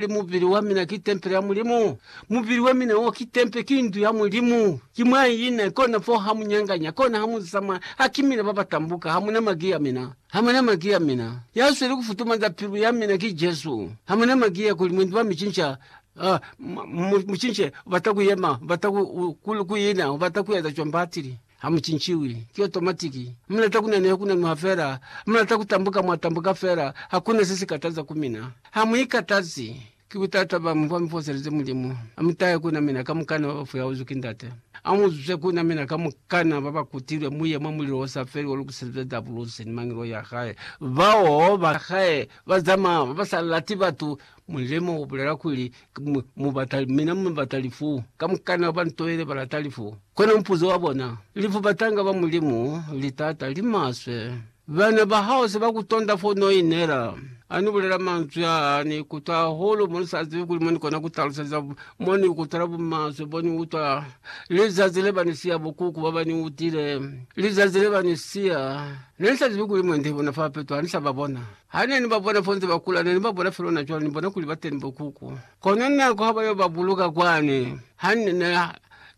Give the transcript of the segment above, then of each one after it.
Ki mubili wa mina ki tempele ya Mulimu. Mubili wa mina wo ki tempe, ki ndu ya Mulimu. Ki mwa ina, kona foo ha mu nyanganya, kona ha mu ziza mwa, ha ki mina ba ba tambuka. Ha muna maki ya mina. Ha muna maki ya mina. Ya sweli ku futumanza pilu ya mina ki Jesu. Ha muna maki ya kuli mwendi wa mi cinca, uh, mu, mu cince, u bata ku yema, u bata ku, ku, ku ina, u bata ku eza cwani batili. Ha mu cinciwi, ki otomatiki. Mu lata ku naneha ku nanuha fela. Mu lata ku tambuka mwa tambuka fela. Hakuna se si kataza ku mina. Ha mu ikatazi. Ki butata bwa mi bwa mi foselezi Mulimu. A mu tahe ku na mina kamukana ba ba fuyauzwi ki Ndate. A mu zwe ku na mina kamukana ba ba kutilwe mu ye mwa mulilo o sa feli o lukiselizwe Dabulusi ni mangelo ya hae. Bao ba hae ba zamaya ba ba sa lati batu Mulimo ubulela kuli, Mubata mina, mubata lifu. Kamukana ba ntoile balata lifu. Kono mupuzo wa bona, lifu batanga ba Mulimu, litaata limaswe. Bana bahao se bakutonda fo noinela. Ani bulela manzwi aa, Ni kutwa hahulu mo ni sa zibi kuli mo ni kona kutaluseza, mo ni kutwela bumaswe bo ni utwa, lizazi le ba ni siya, bukuku bo ba ni utile, lizazi le ba ni siya. Ne ni sa zibi kuli mwendi bona fa peto ha ni sa ba bona. Ha ne ni ba bona fonze ba kula, ne ni ba bona fel'ona cwalo, ni bona kuli ba teni bo kuku. Kono nako ha ba yo ba buluka kwani, ha ne, ne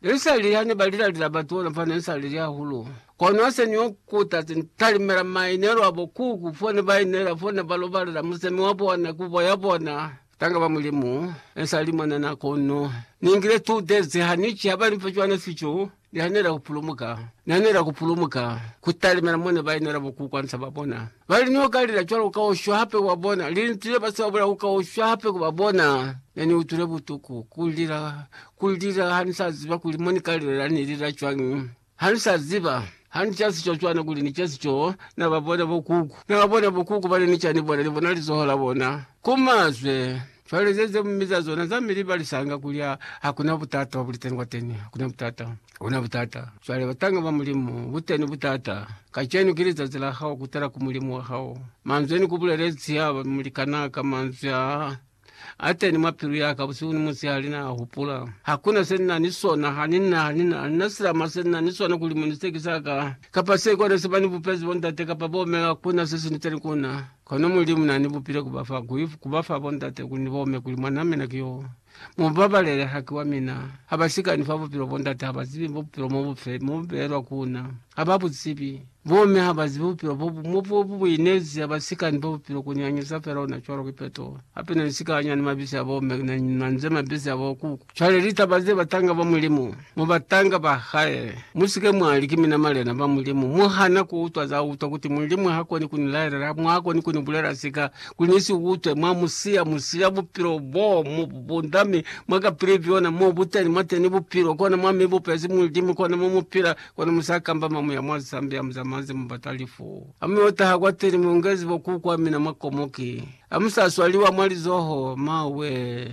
ni sa lili, ha ne ba lila-lila batu ona, fa ne ni sa lili hahulu. Kono ha se ni yo kuta, se ni talimela mainelo a bo kuku, fo ne ba inela, fo ne ba lobalela musemi wa bona, kubo ya bona. Tanga ba Mulimu, nesali mwanana kono ningile two days hanici habalimfa cwana fico nihanela kupulumuka. Nihanela kupulumuka kutalimela mone bainela bo kukwanisa babona. Bali niokalila cwalo kaushwa hape kubabona, linzwi lebase babula kukaushwa hape kubabona. Neniutwile butuku, kulila, kulila hanisaziba kuli monikalilela nilila cwañi. Ha ni sa ziba, ha ni ca sico cwana kuli ni ce sico, na ba bona bokuku. Na ba bona bokuku bana ni ca ni bona, ni bona lizoho la bona ku mazwe. Cwale ze ze mi za zona za mi li ba lisanga kuli ha, ha ku na butata bwa buliteni kwateni. Ha ku na butata. Ha ku na butata. Cwale, batanga ba Mulimu, buteni butata. Kacenu ki lizazi la hao kutala ku Mulimu wa hao. Manzwi a ni ku bulelezi haba mu likana ka manzwi a. Ateni mwa pilu yaka busihu ni musihali na hupula. Hakuna se nina ni sona, hanina, hanina, hanina silama se nina ni sona kuli muni siteki saka, kapa se kona se bani bupezi bo ndate kapa bo me, hakuna se siniteni kuna. Kono Mulimu nani bupile kuba fa, kui, kuba fa bo ndate kuli ni bome kuli mwan'a mina ki yo. Mubabalele, haki wa mina. Haba sikani fa bupilo bo ndate, haba zibi bupilo mo bufe, mo bubelwa kuna. Haba buzibi. Bomme ha ba zibi bupilo bo bu mo bo bu buinezi ha ba si ka ni bo bupilo ku nyangiza fela ona cwalo ki peto. Hape na ni si ka anya ni mabisi a bomme ki na ni nwanze mabisi a bo kuku. Cwale litaba ze batanga ba Mulimu, mo batanga ba Hae. Mu si ke mwa li, Ki mina malena ba Mulimu. Mu hana ku utwa za utwa kuti Mulimu ha koni ku ni laelela, mwa koni ku ni bulela sika kuli ni si utwe. Mwa mu siya, mu siya bupilo bo mu bu bunda mi mwa ka pili byona. Mo bu teni, mwa teni bupilo, kona mwa mi bupezi Mulimu, kona mo mu pila. Kono musa kamba mamu ya mwa lisambi ya muzamanzi mubata lifu. Hamu yo taha kwa teli muungezi bo ku kwa mina mwa komoki. Hamu sa swaliwa mwa lizoho, ma wee.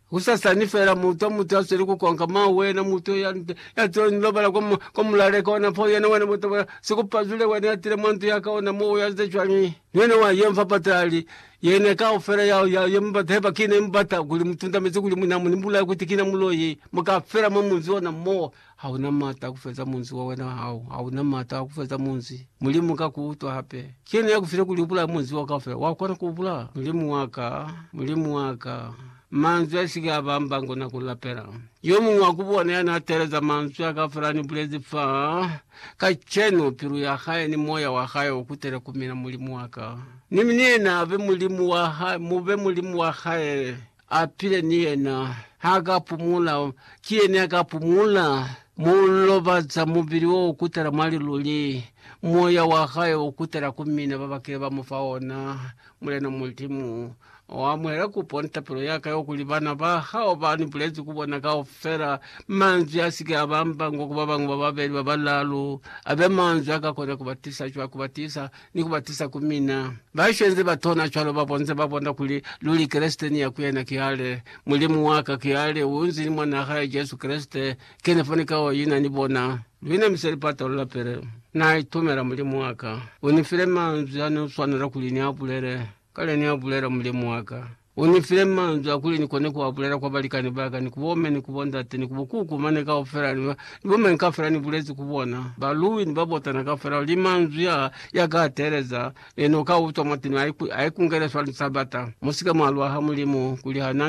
Husasani fela muutwa mutu ya sweli ku konka, ma wee, na mutu ya, ya tile ni lobala kwa, kwa mulaleka wa napo yena wena muta wa sikupazwile wena ya tile mwa ndu ya ka ona mo uyazize cwañi? Ni wena wa ye mfa patali yena kaufela ya, ya, ya mubata heba kina ya mubata kuli mutundamezi kuli mwina mu ni bulaya kuti kina muloi muka fela mwa munzi ona mo Ha u na m'ata a ku feza munzi wa wena hao, ha u na m'ata a ku feza munzi. Mulimu ka ku utwa hape. Ki yena ya ku file kuli u bulaye munzi wao kaufela. Wa kona ku u bulaya? Mulimu wa ka, Mulimu wa ka, manzwi a si ke a ba mbango na ku lapela. Yo muñwi wa ku bona ya n'a teeleza manzwi a kaufela a ni bulezi fa, kacenu, pilu ya hae ni moya wa hae u kutele ku mina, Mulimu wa ka. Ni mi ni yena a be Mulimu wa hae, mu be Mulimu wa hae. A pile ni yena. Ha ka pumula, ki yena ya ka pumula. Mu lobaza mubili wo kutala mwa liluli, moya wa hae u kutala ku mina ba ba kile ba mu fa ona. Mulena Mulimu, U amuhele kupo ni tapelo ya ka yo kuli bana ba Hao ba ni bulezi ku bona kaufela, manzwi a si ke a ba mbangwa ku ba bañwi ba babeli, ba balaalu, a be manzwi a ka kona ku ba tisa cwa, ku ba tisa ni ku ba tusa ku mina. Baswe nze ba tona cwalo ba bonze ba bona kuli luli Kreste ni ya ku yena ki ale, Mulimu wa ka ki ale, u nzi ni Mwan'a hae Jesu Kreste, kene fo ni ka o ina ni bona. Luna mi se li patolola pele. Na itumela Mulimu wa ka. U ni file manzwi a ne u swanela kuli ni a bulele, kale ni a bulela Mulimu wa ka. U ni file manzwi a kuli ni kone ku a bulela kwa balikani ba ka, ni ku bo mme, ni ku bo ndate, ni ku bo kuku mane kaufela, ni ba, ni bo mañi kaufela ni bulezi ku bona, ba Louie ni ba botana kaufela, kuli manzwi a, ya ka teeleza, ne no ka utwa mwateni, a i, a i kungele swa Lisabata. Mu si ke mwa lwa ha Mulimu, kuli ha na,